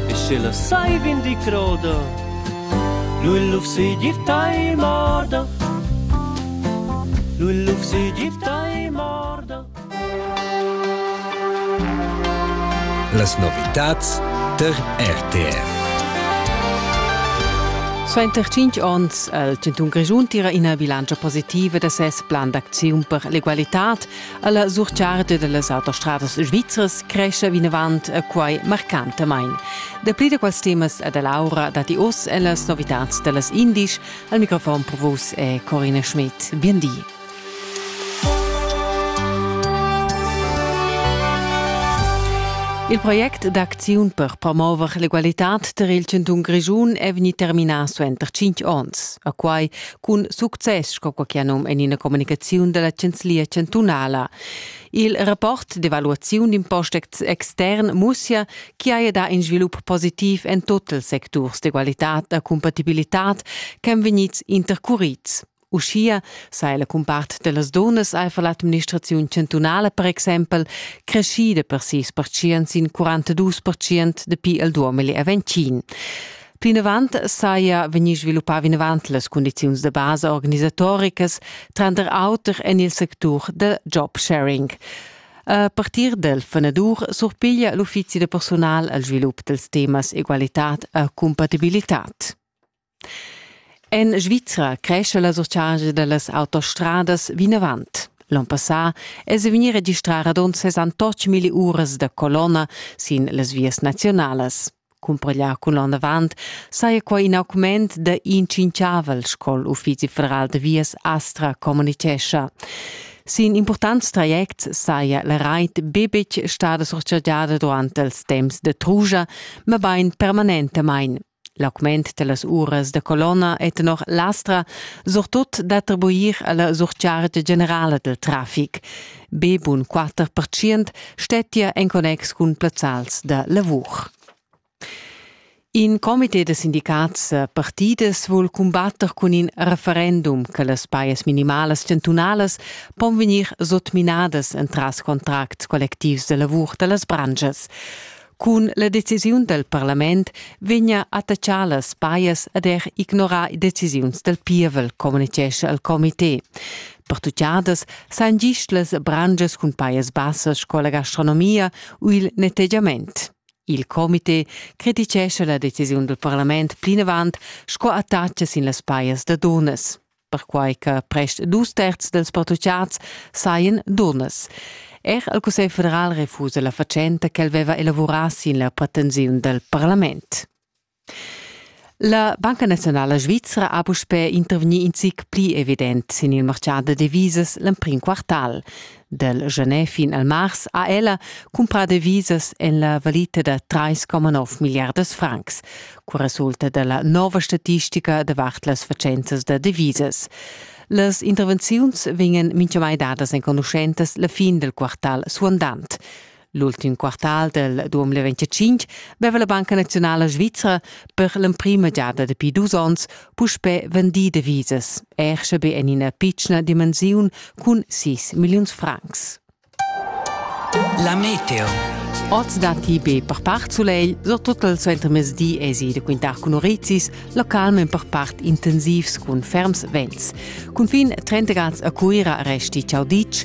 e sche la sai vindi croda lu il lufsi dir tai morda lu il lufsi dir tai morda Las novitats der RTR Suenter cinc onns ha il Cantun Grischun tira ina bilantscha positiva da ses plan d'acziun per l'egualitad Alla surcharta dallas autostradas svizras cresce vinavant a quai marcantamain. Dapli da quels temas e da Laura datti oz e las novitats dallas indisch. Al microfon per vos è Corina Schmidt. Bien di. Il project d'acziun per promover l'egualitad tar il chantun Grischun è vegnì terminà suenter 5 onns. A quai cun success sco quai num en ina communicaziun da la chanzlia chantunala. Il rapport d'evaluaziun d'impost extern mussia chi haja dà in svilup positiv en tot ils secturs d'egualitad e compatibilitad ch'èn vegnids intercurids. Uschia sei la cumpart dellas donas eifer l'administraziun chantunala per exempel creschida per sis percient sin 42 percient dapi il 2020. Plinavant saja vegnì sviluppà vinavant las cundiziuns da basa organisatoricas, tranter auter en il sectur da job sharing. A partir dal fanadur surpiglia l'uffizi da persunal al svilup dals temas egualitad e cumpatibilitad. En Svizra cresce la surchargia da las autostradas vinavant. L'on passà è se vegnì registrà radund 68 milli uras da colonna sin las vias nazionalas. Cumpareglià cun l'ondavant saja quai in augment da in tschinchavel sco l'Uffizi federal da vias Astra communitgescha. Sin importants trajects saja la rait betg stada surchargiada durant els temps da truja, mabain permanentamain. L'augment dellas uras da colonna è tenor l'Astra surtut d'attribuir alla surchargia generala del traffic. Be bun quatter percient stettia en connex cun plazzals da lavur. In comité da sindicats partidas vul cumbatter cun in referendum che las pajas minimalas chantunalas pon vegnir sotminadas entras contracts collectivs da lavur da las branschas. Cun la decisiun dal parlament vegna attachà las pajas ad er ignorar decisiuns dal pievel, communitgescha il comité. Pertuchadas san gist las brangias cun pajas bassas sco la gastronomia u il nettegiament. Il comité criticescha la decisiun dal parlament plinavant sco attacca sin las pajas da dunas. perquai che prest dus terzs dels pattuchats sajan dunnas. Er il Cussegl federal refusa la fatschenta che el veva elavurà sin la pretensiun del parlament. La Banca Nazionale Svizzera ha puspè intervegni in zic pli evident sin il martgà da divisas l'emprim quartal. Dal gener fin al mars ha ella cumprà devisas en la valita da 3,9 milliardas francs, co resulta da la nova statistica davart las fatschentas da devisas. Las intervenziuns vegnan mintgamai dadas enconuschentas la fin dal quartal suandant. L'ultim quartal del 2025 veva la Banca Nazionala Svizra per l'emprima giada dapi dus onns puspè vendì devisas, er sche be en ina pitschna dimensiun cun 6 milliuns francs. La meteo. Oz datti be per part sulegl, surtut il suentermezdi èsi da quintar cun orizis, localment per part intensivs cun ferms vents. Cunfin 30 grads a Cuira resti ciau ditg